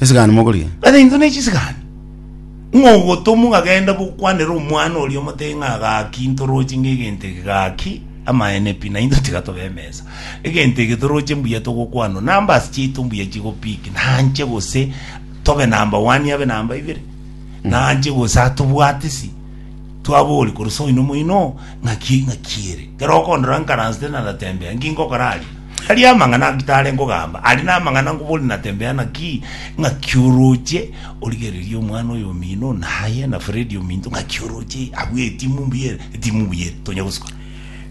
esigani mogorigia Rather intwe ne chisigani. Ng'a ogotomwa gagenda gokwanera omwana oria omote ng'a gaki ntoroche ng'a egento eke gaki amaene pi na intwe tiga tobe emesa. Egento eke toroche mbuya togokwanwa numbers chiaito mbuya chigo pick nanche gose tobe number one abe number ibere. Nanche gose atobwate si twabori korwa soino moino ng'aki ng'aki ere. Kero okondora nkaransete naratembea nki nkokora aria. Aria amang'ana Abitare nkogamba are namang'ana ngobori na Tembea naki, ng'aki oroche origererie omwana oyo omino naye na Fredy ominto ng'aki oroche abwo etimu mbuya ere etimu mbuya ere tonya gosuka.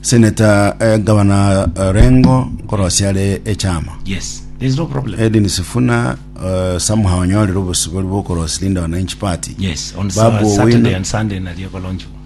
Senator eh, Gavana eh, Rengo nkorosia are echama. Yes, there is no problem. Edwin Sifuna eh, somehow onyorire obosibori bw'okorosia Linda Wananchi Party. Yes, on Babu Sa- Saturday Owino. and Sunday naria kolonchwa.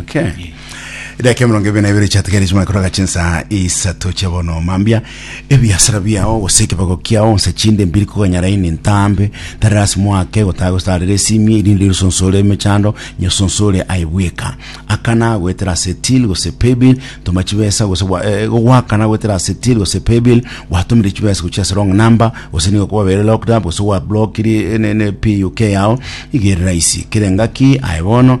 Okay. Dakika emerongo ebere na ebere chiatigari chimana koroga chinsa isato chia bono mambia ebiasara biao gose ekebago kiao onse chinde mbiri koganyara ini ntambe tari ase mwake gotaga gostarera esimie irinde rusonsore emechando nyosonsore aibweka akana goetera ase till gose paybill toma chibesa gose gwa- eh, gogwakana goetera ase till gose paybill gwatomire chibesa gochia ase wrong number gose nigo kwabere locked up gose gwablokiri ne, ne PUK yao igerera isi kerengaki aye bono